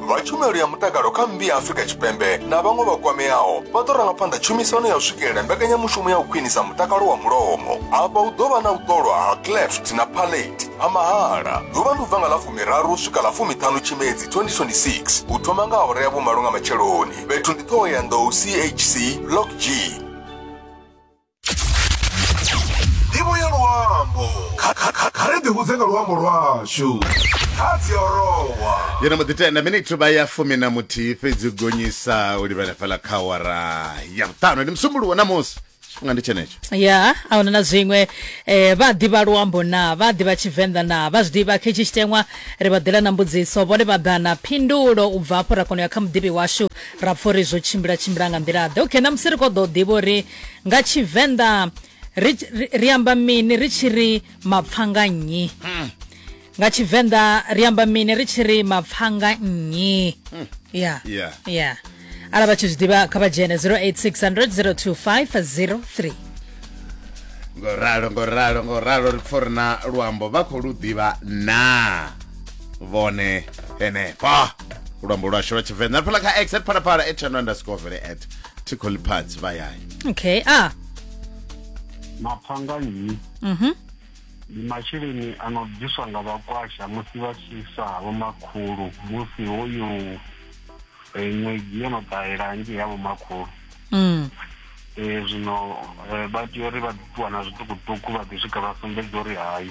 vha tshumelo ya mutakalo kha mmbi ya Afrika Tshipembe na vhaṅwe vha kwameaho vha ḓo ranga phanḓa tshumisano ya u swikelela mbekanyamushumo ya u khwinisa mutakalo wa mulomo afha hu ḓo vha na u ṱolwa ha cleft na palate ha mahala ḓuvha ndi u bva nga ḽa fumiraru swika ḽa fumiṱhanu tshimedzi 2026 u thoma nga awara ya vhumalo nga matsheloni fhethu ndi ṱhoho ya nḓou chc block g ndivho ya luambo Kha- kha- kha- kha ri ḓihudze nga luambo lwashu kha dziorowa yo no mbo ḓi tenda minithu vha ya fumi na muthihi fhedzi u gonyisa u livhela fhala kha wara ya vhuṱanu ndi musumbuluwo na musi tshifhinga ndi tshenetsho ya a huna na zwiṅwe eh, vha ḓivha luambo na vha ḓivha tshivenḓa na vha zwi ḓivha khe tshi tshiteṅwa ri vha ḓela na mbudziso vhone vha ḓa na phindulo u bva afho ra kona u ya kha muḓivhi washu ra pfha uri zwo tshimbila tshimbila nga nḓila ḓe okay ṋamusi ri khou ḓo ḓivha uri nga tshivenḓa ri, ri, ri amba mini ri tshi ri mapfanga nnyi hmm. nga tshivenḓa ri amba mini ri tshi ri mapfanga nnyi hmm. ya ya ya arali vha tshi zwi ḓivha kha vha dzhene 0860025003 ngo ralo ngo ralo ngo ralo ri pfo ri na luambo vha khou lu ḓivha na vhone henefho luambo lwashu lwa tshivenḓa ri phela kha x at phalaphala at channel underscore vele at tickle pads vha yayi okay a maphanganyi mhm ndi masheleni a no bviswa nga vhakwasha musi vha tshi sa vho makhulu musi hoyu um ṅwedzi yo no ṱahela hanzhi ya vho makhulu mm um zwino um vha tea uri vha ṱuwa na zwiṱukuṱuku vha ḓi swika vha sumbedza uri hayi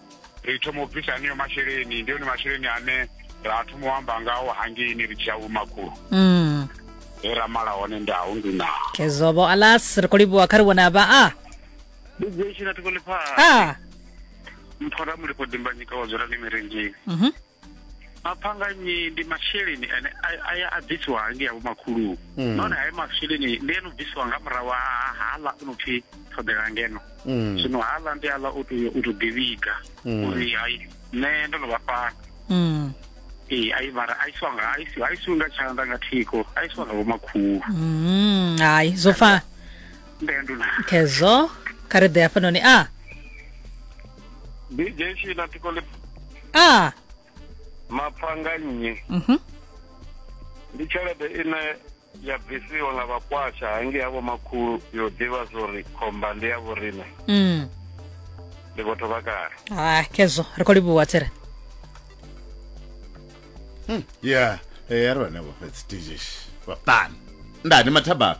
ri thoma u bvisa aneyo masheleni ndi one masheleni ane ra thoma u amba ngawo hangeini ri tshiya vhumakhulu mm. he ra mala hone ndahu ndi na kezobo alas ri khou livhuwa kha ri vhona vha a ah. ndi dzeshina thikoliphasa ah. mphora mulipo dimbanyika wa dzula ni mirenjini mm -hmm. maphanganyi ndi masheleni ane a- aya a bvisiwa hangi yavho makhulu Mm. nahone hayo masheleni ndi eno bvisiwa nga murahu ha ha- haḽa o no pfhi ṱhoḓela ngeno Mm. zwino haḽa ndi haḽa u tou u tou ḓivhiga Mm. uri hai nṋe ndo no vha fhano Mm. ee ai mara a isiwa nga a isiwa a isiwi nga tshanḓa nga thiko a isiwa nga vhomakhulu Mm. hayi zwo fana ndendo na khezo kha ri ḓe hafhanoni a ndi jeshi na tiko le a mapfanga nnyi mhm ndi tshelede ine ya bvisiwa nga vhakwasha hangei havho makhulu yo ḓivha zwori khomba ndi ya vhorine mm ndi vhotho vha kale ha khezwo ri khou livhuwa tsere ya ya ri vhane vha fhedzi tijeshi vhaṱani ndani mathabaro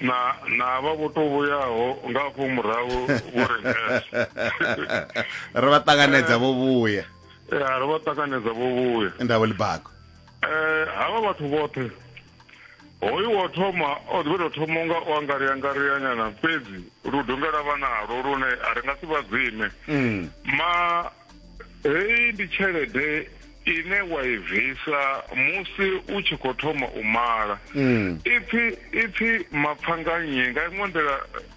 na na vha vho to vhuyaho nga afho murahu vho ri ri vha ṱanganedza vho vhuya ya ri vha ṱanganedza vho vhuya ndavho libago eh havha vhathu vhoṱhe hoyu wo thoma o ḓi to thoma nga o angaria ngaria nyana fhedzi lu dongela vha nalo lune a ri nga si vha dzime mm. ma heyi ndi tshelede ine wa i bvisa musi u tshi khou thoma u mala mm. ipfi ipfi mapfangannyi nga iṅwe nḓila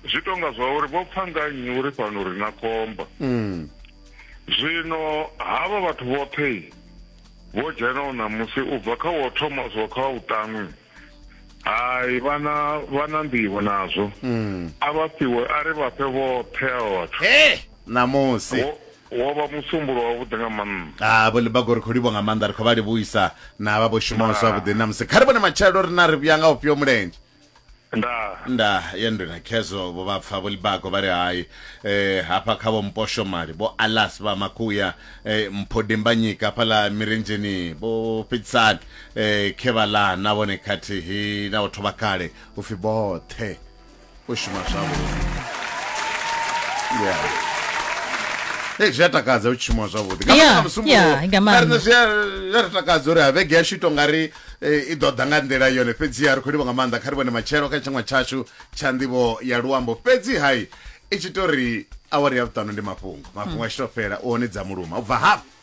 zwi tonga zwa uri vho pfangannyi uri fhano ri na khomba mm. zwino havha vhathu vhoṱhe vho dzhenaho ṋamusi u bva kha wo thoma zwo kha u ṱaṅwi hai vhana vhana nḓivho nazwo mm. a vha fhiwe a ri vha fhe vhoṱhe a vhathu e ṋamusi wo vha musumbulo wavhuḓi nga maanḓa a vho libago ri khou livho nga maanḓa ri khou vha livhuisa na vha vho shumaho zwavhuḓi na musi kha ri vhone matshelo ri na ri vhuya nga ufhio mulenzhe nda nda ya ndina khezo vho vha pfa vho libago vha ri hai eh hafha kha vho mposho mali vho alas vha makuya eh, mpho dimbanyika hafhaḽa mirendzheni vho fhedzisani eh, khevala na vhone khathihi na vhathu vha kale u pfi vhoṱhe u shuma zwavhuḓi yeah. Hey, zwi a takadza u tshimuwa zwavhuḓi Nga Yeah, maanḓa musi yeah, muṅwe- nga maanḓa. Kharina zwi a- zwi a ri takadza uri ha vhege yashu ito nga ri eh, i ḓo ḓa nga nḓila yone fhedziha ri khou livha nga maanḓa kha ri vhone matshelo kha tshiṅwe tshashu tsha nḓivho ya luambo fhedzi hai i tshi to ri awari ya vhuṱanu ndi mafhungo mafhungo a tshi to fhela u hone dza muluma u bva hafho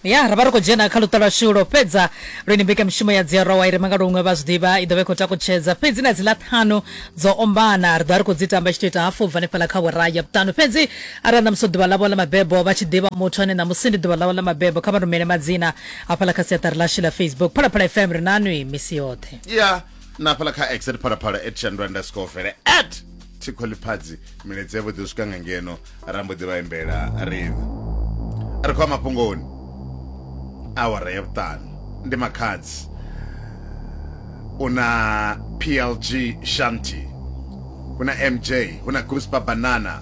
ya ra vha ri khou dzhena kha luṱa lwa shulo fhedza lwini mbekamishumo ya dziarowa i re mangalo huṅwe vha zwi ḓivha i ḓo vha i khou takutshedza fhedzi na dziḽa ṱhanu dzo ombana ri ḓo vha ri khou dzi tamba i tshi to ita hafu u bva hanefhala kha wera ya vhuṱanu fhedzi arali ṋamusi ḓuvha ḽavho ḽa mabebo vha tshi ḓivha muthu ane ṋamusi ndi ḓuvha ḽavho ḽa mabebo kha vha rumele madzina hafhala kha siaṱari ḽashu ḽa facebook phalaphala fm ri nanwi misi yoṱhe ya na hafhala kha x at phalaphala at shandu underscore vele at thikho ḽiphadzi miledzhe vho ḓi swika nga ngeno ra mbo ḓi vha imbela riṋe ri khou a mafhungoni awara ya vhuṱanu ndi makhadzi u na plg shanti hu na mj hu na guspa banana